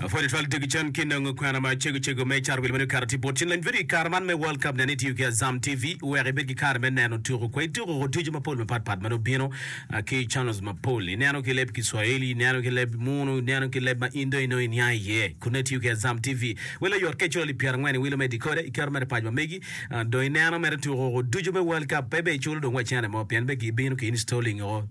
Apwonyo twal Jackie Chan ki nongo kwena ma cego cego me Car Wil meno kare tye bot cen. Lany vidio i kare man me World Cup nen itiyo ki Azam TV wek ibed ki kare me neno tuko kwai tuko ko ducu mapol mapat pat ma nongo bino ki channels mapol. Ineno ki leb Kiswahili, ineno ki leb Munu, ineno ki leb ma in dong inongo iniang iye. Kun nongo itiyo ki Azam TV welo yot ka iculo lib pyera ngwen iwilo me decoder iketo mere pac ma megi dong ineno mere tuko ko ducu me World Cup pe be iculo dong wa cene mo pien be ki bino ki installing o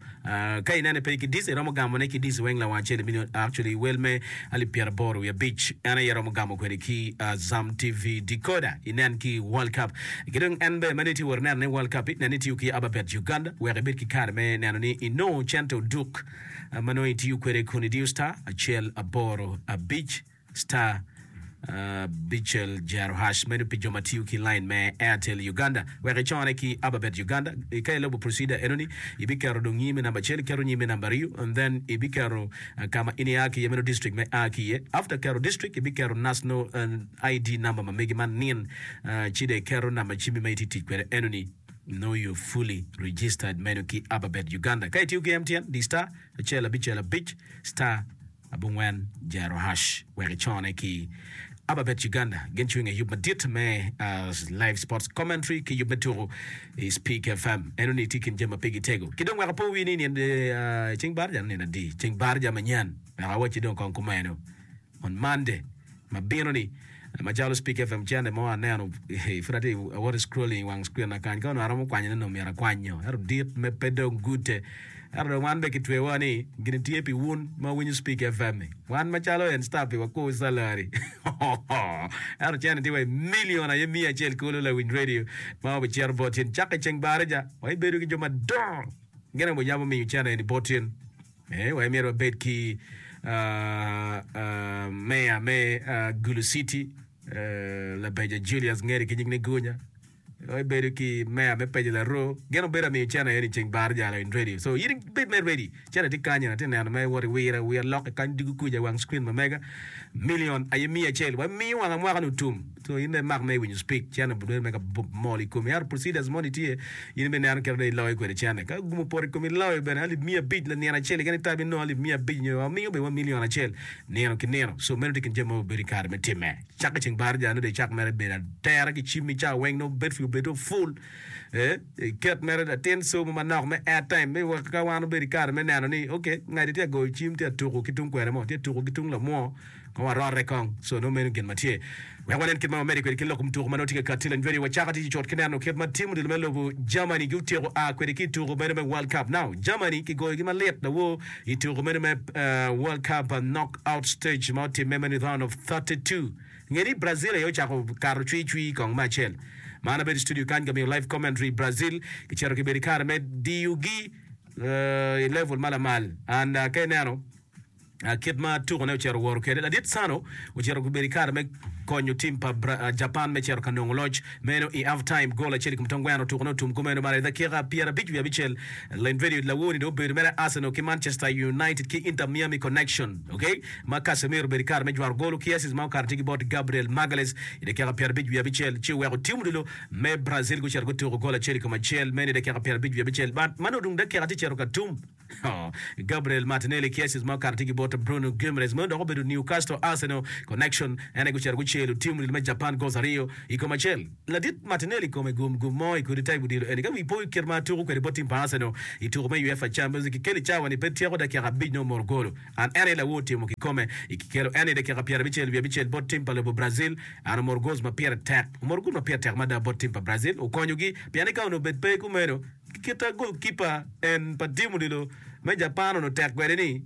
Ka inene pe ki dice iromo gamone ki dice weng lawang acel ibino actually wel me alip pyeraboro wiye abic en aye iromo gamo kwede ki Azam TV decoder inen ki world cup ki dong en be meno itye wot ineno ne world cup nen itiyo ki ababet Uganda wek ibed ki kare me neno ni inongo cente oduk ma nongo itiyo kwede kun idiyo star acel aboro abic Star Bichel Jearohash medo pi jo ma tiyo ki lain me Airtel Uganda wek icone ki Ababet Uganda. Ka ilubo procedure enoni, ibiketo dong nyimi number acel, iketo nyimi number ariyo and then ibiketo ka ma in ia ki iye meno district ma ia ki iye. After keto district, ibiketo national ID number ma megi ma nin ci dong iketo number cimi ma itye tic kwede enoni. Now you're fully registered meno ki Ababet Uganda. Ka itiyo ki MTN, di star acel abicel abic star. Abongwen, Jerohash wek icone ki Ababet Uganda gin cwinge i yub madit me Live Sports Commentary ki yub me tuku i Speak FM. Eno ni itye kin jami ma pigi tego. Ki dong wek apo wi ni nyen ceng barja nino adi? Ceng barja manyen wek awacci dong kong kumeno on Monday. ma bino ni macalo speak fm channel mo aneno pud atye awoto scrolling i wang screen akany ka onongo aromo kwanyone ni omyero akwany nyo ero dit me pe dong gute ero dong wan be kitwewa ni gini tye pi wun ma winyo speak fm ni wan macalo en star pi wakur salary ero channel tye wa i million aye miya acel kulu lawiny radio ma obicero bot in caka i ceng barija wa ibedo ki jo madongo gene obiyabo miyo channel eni bot in Me wek myero wabed ki meya me Gulu City, Labeja Julius ngeri ki nying ni Gunya, wek ibedo ki meya me Peja Laro, gin obedo amiyo cene aye ni ceng bar jalo in ready. So in bed me ready. Cene tye kany, atye neno me wot iwira wira lok kany dugu kuca wang screen ma mega. Million aye miya acel. Wamiyo wanga mwaka ni otum. So in dong imak me winyo speak cene but dong imega mol i komi. Ento procedures moni tye in ibi neno kit ma dong iloyo kwede cene. Ka gumo opoto i komi iloyo bene alip miya abic lanino acel keken itabi inongo alip miya abic nyo wamingo bene wa milion acel nino ki nino. So meno tye kin jami ma wabedo i kare me timme. Cak ki ceng baraja nongo dong icak mere bedo atera ki cimmi cawa weng nongo battery obedo full. Eh, iket mere latin somo manok me airtime me wek ka wan obedo i kare me neno ni okay ngadi tye ka goyo cim tye ka tuku ki tung kwena mo, tye ka tuku ki tung lamwo. Kong warorre kong, so nongo meno gin ma tye. Wek wanen kit ma wamedde kwede kin loko mutuku ma nongo tye ka kati. Lanyweriwa cako tic ocut ki neno kit ma tim odilo me lobo Germany gutyeko a kwede ki i tuku meno me World Cup. Now, Germany kigoyogi malit lawor i tuku meno me World Cup knockout stage ma otimme meno i round of thirty two. Nge ni Brazil aye ocako kato cwi cwi kong me acel. Ma an abedo i studio kany ka miyo live commentary. Brazil kicito kibedo i kare me diyogi i level ma lamal and ka ineno, kit ma tukone ocito woro kwede. Ladit Sano ocito obedo i kare me konyo tim pa Japan me cito ka nongo loc meno i half time. Gol acel i kom tong gweno tukone otum kumeno malo i dakika pyera abic wiye abicel. Len vedio Lawoni dong obedo mere Arsenal ki Manchester United ki Inter Miami connection ok ma Casemiro obedo i kare me jwaro golo ki assist ma okato tye ki bot Gabriel Magalhaes i dakika pyera abic wiye abicel ci oweko tim odilo me Brazil gucito gutuko gol acel i kom acel meno i dakika pyera abic wiye abicel. But ma nongo tung dakika tye cito ka tum. Gabriel Martinelli, Cassius ma okato tye ki bote, Bruno Guimaraes ma odok obedo Newcastle Arsenal connection en aye gucito guceyo lutim odilo me Japan goals aryo i kom acel. Ladit Martinelli kome gum gum mo i kodi type odilo eni ka wi po kit ma tuko kwede bot tim pa Arsenal i tuko me UEFA Champions League kikeli cawa ni pe tyeko dakika abic nongo moro golo an en aye lawor timo kikome i kikelo en i dakika pyerabicel wiye abicel bot tim pa lobo Brazil an omoro goals ma pire tek omoro gol ma pire tek mada bot tim pa Brazil okonyogi pien ni ka onongo bed pe kumeno Kita gol kipa en pa tim odilo me Japan onongo tek kwede ni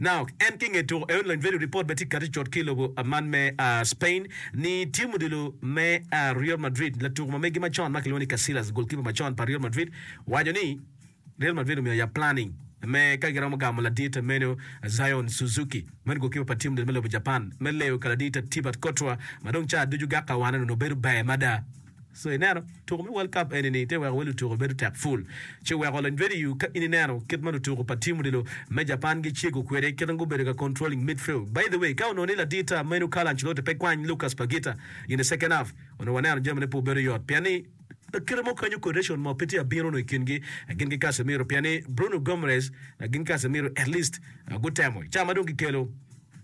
Naok en ki nge tuko eun lany value report bene tye kati cot ki lobo man me Spain ni tim odilo me Real Madrid latuko ma megi macon ma kilwongo ni Casillas gol kipa macon pa Real Madrid waco ni Real Madrid omiyo ya planning me ka giromo gamo ladite meno Zion Suzuki meno gol kipa pa tim odilo me lobo Japan me leyo ka ladite Tibat Courtois ma dong ca ducu gak ka wane onongo bedo ber mada. So ineno, tuko me World Cup eni-ni te weko wa lutuko bedo tek pul. Ce weko lony radiyu ka in ineno kit ma lutuko pa tim odilo me Japan gicego kwede, kit ma gubedo ka controlling midfield. By the way, ka onongo ni ladir ta meno Carlo Ancelotti pe kwany Lucas Paqueta in the second half, onongo waneno jamine pe obedo yot pien ni, pa kite mo kanyo coordination mo pe tye abino onongo i kingi gin ki Casemiro pien ni Bruno Gomares gin ki Casemiro at least gutemo ca ma dong gikelo.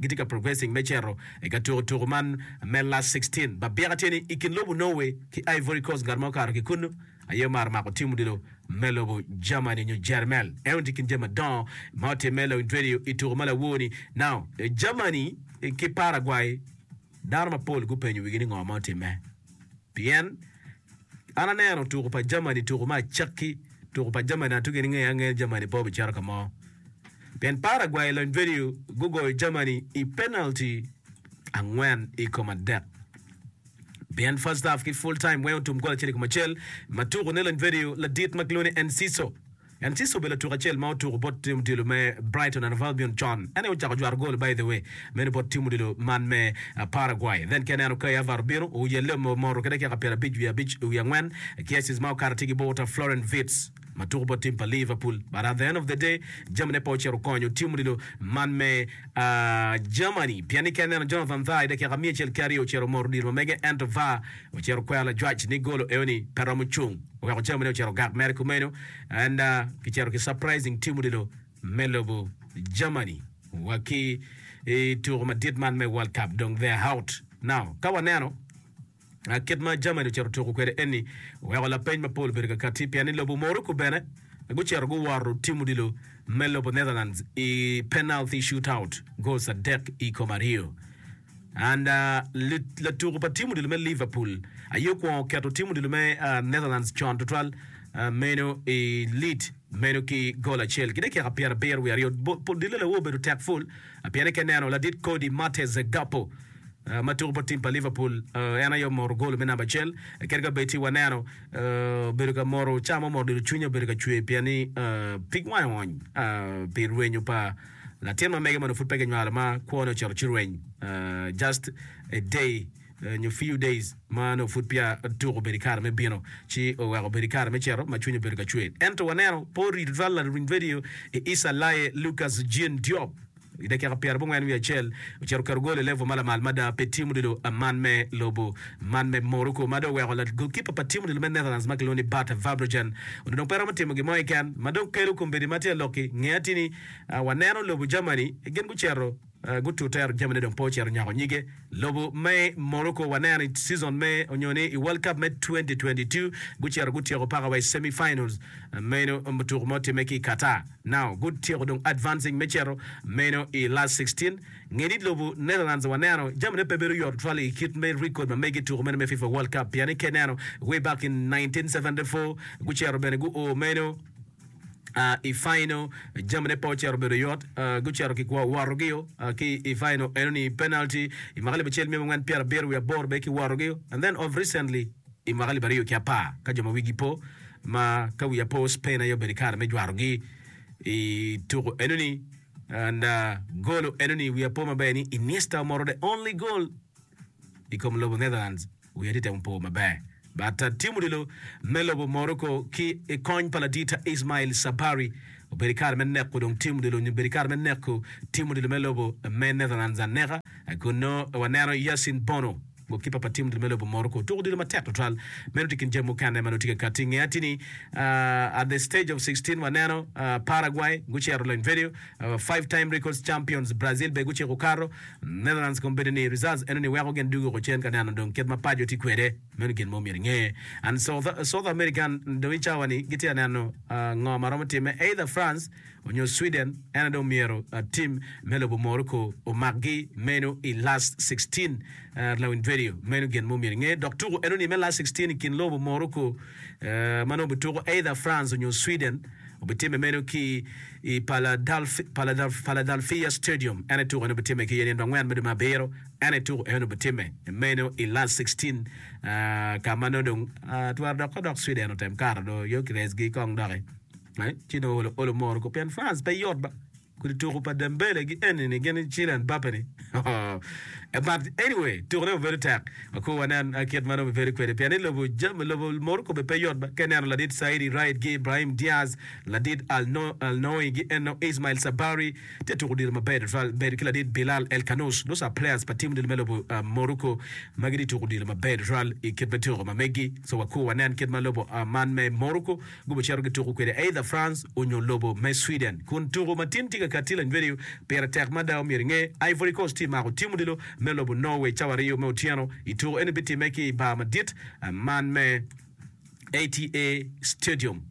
gitye ka progressing me cito i ka tuko tuku man me last sixteen. Babika tye ni i kin lobo Norway ki Ivory Coast ngat mo kato ki kunnu aye omaro mako tim odilo me lobo Germany nyo Jermel. Eno tye i kin jami madongo ma otimme lawiny radio i tuku ma lawor ni now. Germany ki Paraguay dano mapol gupenyo wigi ni ngo ma otimme pien An aneno tuku pa Germany, tuku me acakki, tuku pa Germany atugi ni ngeye angeya ni Germany pe obicito ka mo. Pien Paraguay i lony venue gugoyo Germany i penalty angwen i kom adek. Pien first half ki full time weng otum gol acel i kom acel ma tukune lony venue ladit ma kilwongo ni Enciso En ci obedo latuk acel ma otuku bot tim odilo me Brighton and Hove Albion con. En aye ocako jwato gol by the way meno bot tim odilo man me Paraguay. Then ki aneno Kai Havertz bino, Oyalle ome omoto ki dakika pyera abic wiye abic wiye angwen ki assist ma okato tye ki bur ta Florian Wirtz ma tuku bot tim pa Liverpool but at the end of the day jami ne pe ocito konyo tim odilo man me Germany pien ni ki aneno Jonathan Tah i dakika miya acel ki aryo ocito omoto odilo ma mege ento var ocito kwero lajwac ni golo eo ni pe romo cung. oweko jamine ocito ogak mere kumeno and kicito ki surprising team odilo me lobo Germany wa ki i tuko madit man me World Cup dong they are out now ka waneno kit ma Germany ocito tuko kwede eni oweko lapeny mapol obedo kakati pien ni lobo Morocco bene gucito guworo team odilo me lobo Netherlands i penalty shootout goals adek i kom aryo. And latuku pa tim odilo me Liverpool aye okwongo keto tim odilo me Netherlands con tutwal meno i lit meno ki gol acel ki dakika pyerabiro wiye aryo. Dille lawo obedo tek pul pien eke neno ladit kodi Mates Gakpo ma tuku bot tim pa Liverpool en aye omoro gol me namba acel kadi ka bed ci waneno obedo ka moro ca mo moro dilo cwinye obedo ka cwer pien ni pig wange ony pi rwenyo pa Latin ma mege ma onongo pud pe kinywalo ma kwone ocito ci rweny, just a day nyo few days ma onongo pud peya otuko obedo i kare me bino, ci oweko obedo i kare me cito ma cwinye obedo ka cwer. Ento waneno pe oriti tutwal laluny vedio i Isa Laye Lucas Jean Diop i dakika pyera abongwen wiye acel ocito oketo gol i level ma lamal mada pi tim odilo man me lobo man me Morocco ma dong oweko la golkipa pa tim odilo me Netherlands ma kilwongo ni Bart Vabrojan onongo dong pe romo timo gin mo keken ma dong kelo kombeddi ma tye ka lok ki nge atini Waneno lobo Germany gin gucito gutute Germany dong pe ocito nyako nyige. Lobo me Morocco waneno i season me onyo ni i World Cup me twenty twenty two gucito gutyeko paka wa i semi finals meno tuku ma otimme ki i Qatar. Now gutyeko dong advancing me cito meno i last sixteen. Nge ni lobo Netherlands waneno Germany pe bedo yot tutwal i kit me record ma mege i tuku meno me FIFA World Cup pien ni ka ineno way back in nineteen seventy four gucito bene guo meno I Faino, jamine pe ocito bedo yot. Gucito ki kwo worogi-o ki i Faino enoni, penalty, i mwaka alip acel mia abongwen pyera abiro wiye aboro bene ki worogi-o. And then of recently, i mwaka alip aryo ki apar ka jo ma wigi po, ma ka wiya po, Spain aye obedo i kare me jwarogi i tuku enoni. And golo enoni wiya po maber ni Iniesta omoro the only goal. i kom lobo Netherlands wiya tye temo po maber bata tim odilo me lobo Morocco ki i kony pa ladita Ismail Sabari obedo kare me neko dong tim odilo nyo bedo kare me neko tim odilo me lobo me Netherlands aneka kun nongo waneno Yassine Bono gokipa pa tim odilo me lobo Morocco tuko odilo matek tutwal meno tye kin jami mukene ma nongo tye ka kati nge atini uh, at the stage of 16 waneno uh, Paraguay gucero loyo video Five time records champions Brazil bene guciko okato Netherlands kom bedo ni results eno ni weko gin dugo kucen ka neno dong kit ma paco tye kwede meno gin mo myero inge and South American dong i cawa ni gitye ka neno ngo ma romo time either France onyo Sweden eno dong myero team me lobo Morocco omak gi meno i last sixteen lawiny video meno gin mo myero inge dok tuko eno ni me last sixteen i kin lobo Morocco ma nongo bituko either France onyo Sweden Obitimme meno ki i Philadelphia Stadium, ento tuko eno obitimme ki i nino pa angwen me dwe me abiro, ento tuko eno obitimme meno i Last Sixteen, ka ma nongo dong twero dok ka dok Sweden otem kato dong yo ki resgi kong doki, ci dong olo moro kong pien France pe yot ba. Kodi tuku pa Dembele gi enini gin i Kylian Mbappe ni ooh but anyway tuku ne obedo tek akur wanen kit ma romo bedo kwede pien ni lobo jami lobo Morocco be pe yot ka ineno ladit Saidi Raid gi Ibrahim Diaz ladit Alnoui gi eno Ismail Sabari tye tuku odilo maber tutwal medo ki ladit Bilal El Kanous those are players pa team odilo me lobo Morocco ma gitye tuku odilo maber tutwal i kit me tuku ma megi so wakur wanen kit ma lobo man me Morocco gubicito gituko kwede either France onyo lobo me Sweden. Kun tuko ma tin tye ka katti lanywedi-yu pire tek mada, omyero inge, Ivory Coast tye mako tim odilo me lobo Norway cawa aryo me otyeno i tuko eni bitimme ki i bar madit man me ATA Stadium.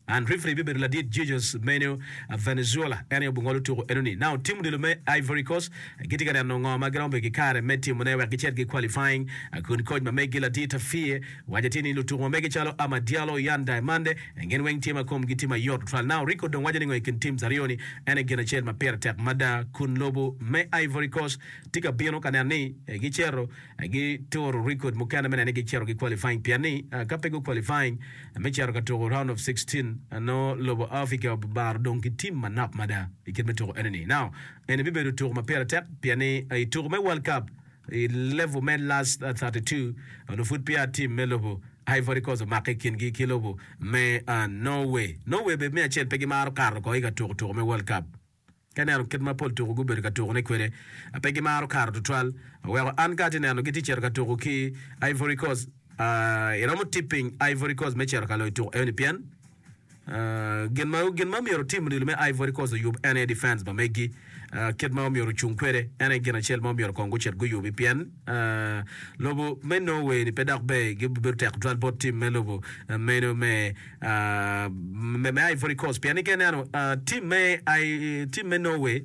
And referee bibedo ladit Jesus Manuel Valenzuela, en aye obungolo tuko enoni. Now tim odilo me Ivory Coast gitye ka neno ngo ma giromo bedo ki kare me timone wek gicit gi qualifying kun coach ma meggi ladit Afie, Wacce tye ni lutuku mamege calo Ama Diallo, Yan Diamande, gin weng tye ma komgi tye mayot tutwal. Now Rico dong waco ni ngo i kin teams aryo ni en aye gin acel ma pire tek mada kun lobo me Ivory Coast tye ka bino ka neno ni gi cito gi turo record mukene me neno ni gi cito gi qualifying pien ni ka pe gu qualifying me cito ka tuku round of sixteen nongo lobo Africa obaro dong ki team manok mada i kit me tuku eni ni. Now eni bibedo tuku ma pire tek pien ni i tuku me World Cup I level me last 32, onongo pud peya tim me lobo Ivory Coast omakke i kingi ki lobo me Norway. Norway bene me acel pe gimaro kato oko i ka tuko tuko me World Cup. Ka ineno kit ma pol tuko gubedo ka tukone kwede, pe gimaro kato tutwal. Oweko an ka atye neno gitye cito ka tuko ki Ivory Coast, iromo tipping Ivory Coast me cito ka loyo tuko eno-ni pien, Gin ma myero tim odilo me Ivory Coast oyub en aye defense pa megi. Kit ma myero ocung kwede en aye gin acel ma myero kong gucit guyubi pien lobo me Norway ni pe dok ber gi bedo tek tutwal bot tim me lobo meno me Ivory Coast pien ni ka ineno tim me tim me Norway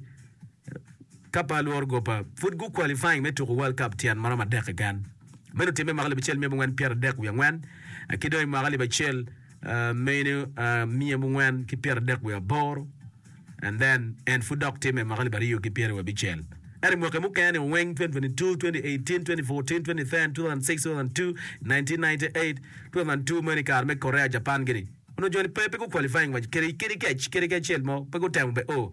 ka pe alworo gopa pud gu qualifying me tuko World Cup tyen ma romo adek keken. Meno timme mwaka alip acel mia abongwen pyerardek wiye angwen ki dong i mwaka alip acel meno miya mungwen ki pyera dek wiye aboro and then en pud dok time mwaka alip aryo ki pyera wiye abicel ento mwaki mukene ni weng 2022 2018 2014 2010 2006 2002 1998 2002 meno i kare me Korea Japan gini onongo joni pe pe gu qualifying wa kede kede kec kede kecel mo pe gutemo be o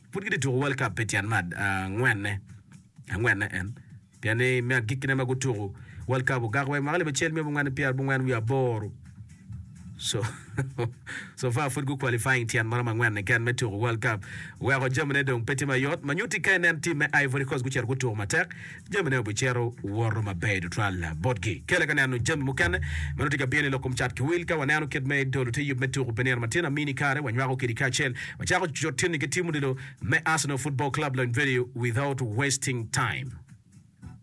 Pud gitye tuko World Cup pi tyen me angwenne angwenne en, pien ni me agikkine ma gutuko World Cup ogak wek mwaka alip acel myel abongwen ki pyera abongwen wiye aboro. So, so far pud gu-qualifying tyen maromo angwen keken me tuko World Cup. Weko jamine dong pe tye mayot. Ma nyutti ka inen tim me Ivory Coast gucito gutuko matek, jamine obicito woto maber tutwal botgi. Kele ka neno jami mukene ma nongo tye ka bino i lok kom cat ki wil. Ka waneno kit me dolo te yub me tuku pi nino matin, amini kare wanywako kidi kacel wacako cucut tinni ki tim odilo me Arsenal Football Club Lony Video without wasting time.